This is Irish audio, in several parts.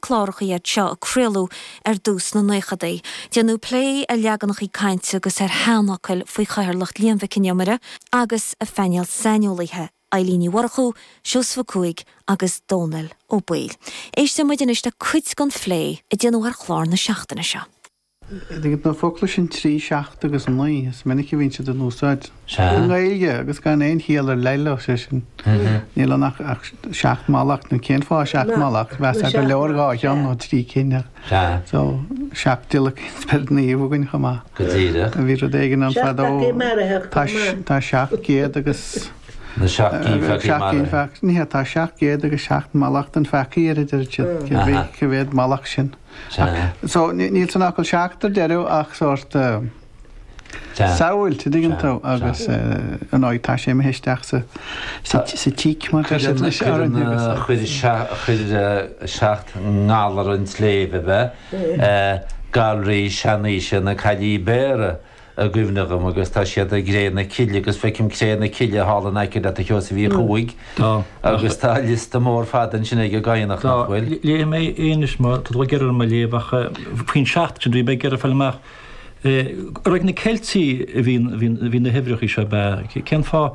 clárachaí iad seo a craoladh ar dtús sna naochadaí. Déanadh plé ar leaganachaí cainte agus ar sheanfhocail faoi chathaoirleacht Liam Mhic an Iomaire agus a phainéal saineolaithe, Eilín Ní Mhurchú, Seosamh Ó Cuaig agus Dónall Ó Baoill. Éistfidh muid anois le cuid den phlé a déanadh ar chlár na seachtaine seo. Idir na focla sin trí, seacht agus naoi, is minic a bhíonn siad in úsáid i nGaeilge agus gan aon chiall ar leith leo, sé sin, níl ann ach seacht mallacht, nó cén fáth seacht mallacht? Mheasfá gur leor dhá cheann nó trí cinn, so seacht mallacht is bíonn naoi againn chomh maith. Go díreach. Bhí rud éigin ann fadó, tá seacht gcéad agus seacht gcinn pheacaí marbh. Ní hea, tá seacht gcéad agus seacht mallacht an pheacaí ar a deirid siad, cé mhéad mallacht sin? Sea. So níl san fhocal seacht ar deireadh ach sórt Sea. samhail, an dtuigeann tú, Sea. agus ar ndóigh tá sé imithe isteach sa sa tíc mar atá sé anois orainn agus a. Cuireadh sea chuir seacht ngalar an tsléibhe ab ea, galraí seanaoise na Caillí Béara, i gcuimhne dhom agus tá siad i gCré na Cille agus feicim Cré na Cille thall in aice leat, a Sheosaimh Uí Chuaig agus tá liosta mór fada ansin ag an gCadhnach, nach bhfuil? Léifidh mé é anois má tá tú ag iarraidh orm a léamh ach faoin seacht sin bhí mé ag iarraidh fáil amach ar ag na Ceiltigh a bhí na huimhreacha seo ab ea? Cén fáth?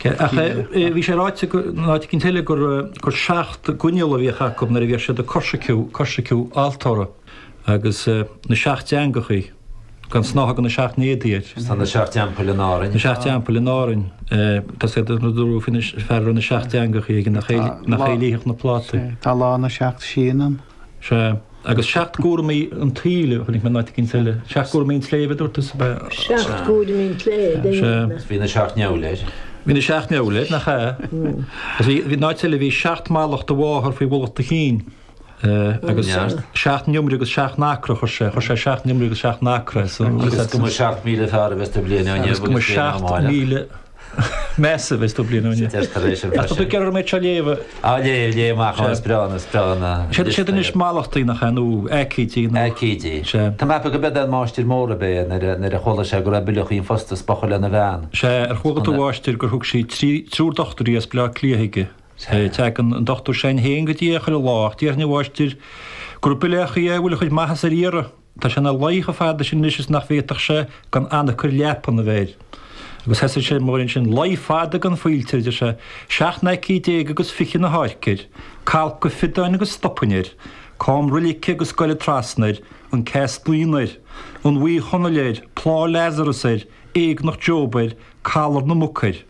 Ach bhí sé ráite in áit eicínt eile gur seacht gcoinnle a bhíodh acu nuair a bhíodh siad ag coisreacan altóra agus na seacht dteangachaí, gan snáth de na seacht n-éadaí air. Tá na seacht dteampaill in Árainn. Na seacht dteampaill in Árainn. Tá siad, dúradh faoin bhfear a raibh na seacht dteangachaí aige nach é a lífeadh na plátaí. Tá lá na seacht síon ann. Sea, agus seacht gcúraimí an tsaoil, a chonaic mé in áit éigin eile. Seacht gcúraimí an tsléibhe, a dúirt tú, ab ea? Seacht gcúraimí an tsléibhe, a dúirt mé. Bhí na seacht ndeabhail air. Bhí na seacht ndeabhail air, nach ea? Agus bhí, in áit eile, bhí seacht mallacht do mháthar faoi mhullach do chinn. Agus seacht n-iomaire agus seacht n-acra, chuir sé, chuir sé seacht n-iomaire agus seacht n-acra. Agus go mba seacht míle fearr a bheas tú bliain ó inniu agus bliain amháin amach. Measaim, is tú bliain ó shin. Tá mé sin freisin. Tá tú ag iarraidh orm é seo a léamh. Á léamh, léamh amach an is breá is breá na. Sé sin is mallachtaí nach ea nó aicídí nó. Aicídí. Sea. Tá mé ag ceapadh an máistir mór ab ea nuair a nuair a chuala sé go raibh Bileachaí an Phosta is bocha lena bhean. Sea ar chuala tú a Mháistir gur thug sí trí triúr dochtúirí as Bleá Cliath aige. Sea. Teagann an dochtúir s'againn héin go dtí é chuile lá ach déarfainn a mháistir gur Bileachaí a bhfuil a chuid maitheasa ar iarraidh. Tá sé ina luí chomh fada sin anois is nach bhféadfadh sé gan anacair leapan a bheith air. Agus thosaigh sé mar sin, luí fada gan faoilte air, deir sé, seacht n-aicíd déag agus fiche na hÁirce air, calcadh fiodáin agus stopainn air, camroilig agus goile trasna air, an ceas naon air, an Bhuí Chonaill air, plá Lazarus air, éagnach Job air, calar na muc air.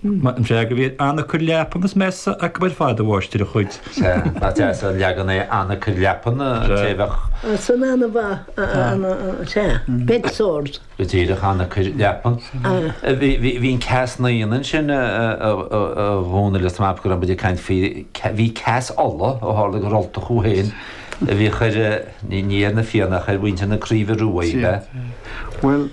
Maith an freagra, bhí anacair leapan is measa acu ar fad a mháistir a chuid. Sea, nach deas an leagan é anacair leapan, té a bheadh. Sin ana mhaith, ana, sea, bed sores. Go díreach, anacair leapan. Bhí an Ceas Naíon ansin a Dhomhnaill is má b'ea go raibh muid ag caint faoi, bhí Ceas Uladh ó tharla gur Ultach thú féin a bhíodh ar, ní ar na Fianna ach ar mhuintir na Craoibhe Ruaidh, an ea? Bhuel.